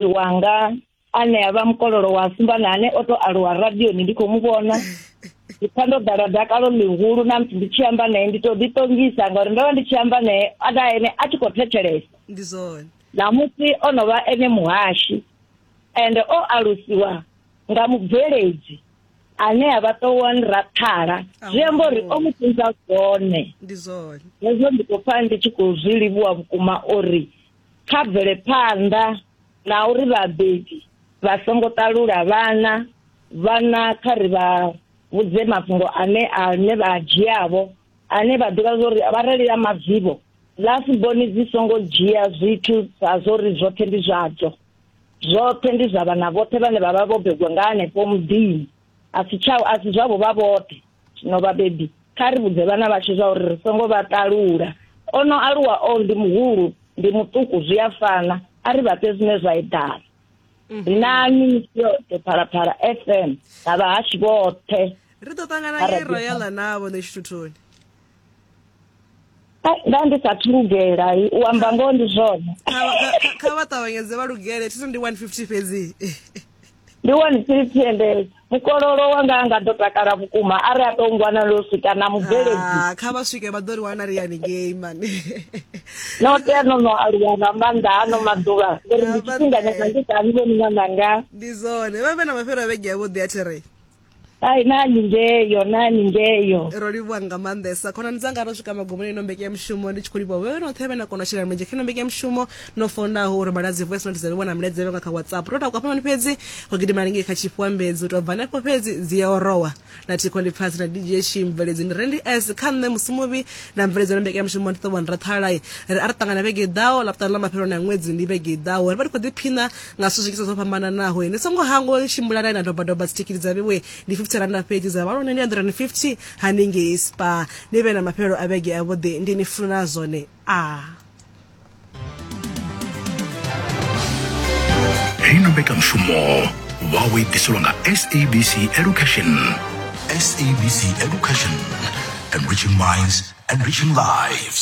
wanga ane a vha mukololo wa sumbana ane o to aluwa radioni ndi khou mu vhona ndi pfa ndo ḓala dakalo ḽihulu na musi ndi tshi amba naye ndi to ḓiṱongisa ngauri ndo vha ndi tshi amba naye a da ene a tshi khou thetshelesa ndi zwone ṋamusi o no vha ene muhashi ende o alusiwa nga mubveledzi ane a vha ṱowan rakhala zwi amba uri o mu funza zwone ndi zwone hezwo ndi khou pfa ndi tshi khou zwi livhuwa vhukuma uri kha bvele phanḓa na uri vhabebi vha songo ṱalula vhana vhana kha ri vha vhudze mafhungo ane ane vha a dzhiavho ane vha ḓivha zwa uri vharali ya madzivho lasiboni dzi songo dzhia zwithu sa zwo ri zwoṱhe ndi zwadzo zwoṱhe ndi zwa vhana vhoṱhe vhane vha vha vho begwa nga hanefho muḓini a si tsha a si zwavho vha vhoṱhe zwino vhabebi kha ri vhudze vhana vhashu zwa uri ri songo vha ṱalula o no aluwa o ndi muhulu ndi muṱuku zwi a fana a ri vhafhe zwine zwa eḓana mhm. ri na minisi yoṱhe phalaphala f m na vhahashi vhoṱhe ri ḓo ṱangana nge royala navho ṋe tshithuthoni nda ndi sa thu lugela u amba ngoho ndi zwone kha vha ṱavhanyedze vha lugele thi ndi 150 fhedzi ndi 150 ende mukololo wanga a nga ḓo takala vhukuma a ri a tou ngwana lo swika na mubveledzi ah, kha vha swike vha ḓo ri wana ri yani ngei mani no tea no no aluwa nga maanḓa ano maḓuvha ngori ndi tshifhinganyana ndi sa ni vhoni ṅwananga ndi zwone vha vhe na mafhelo a vhege yavho ḓi a therei ai nani ngeyo nani ngeyo ro livhuwa nga maanḓesa khonani dzanga ro swika magumoni ino mbeke ya mushumo ndi tshi khou livhuwa vhewe noṱhe vhe na kona u shela mulenzhe kha ino mbeke ya mushumo no fonaho uri maladzi voice note dza livhuwa na milaedza vhenga kha whatsapp ro takuwa fhamani fhedzi ro gidima lingei kha tshifhuambedzi u tou bva hanefho fhedzi dzi ya orowa na thikho ndi pfasi na dj shi mveledzi ndi rendi s kha nṋe musi muvhi na mveledzo na mbeke ya mushumo ndi ṱohwani ra ṱhalai ri a ri ṱangana vhege i ḓaho laputani ḽa mafheloni a ṅwedzi ndi vhege i ḓaho ri vha ri khou ḓiphina nga zwithu zwinzhi zwo fhambananaho ni songo hangwa uri tshimbilani na dobadoba dzitikiti dza vhewe ndi 50 randa fhedzi dza vha lone ndi 150 haningei spa ni vhe na mafhelelo a vhege avhuḓi ndi ni funa zwone a heyi no mbekanyamushumo wawe i ḓiselwa nga sabc education sabc education enriching minds enriching lives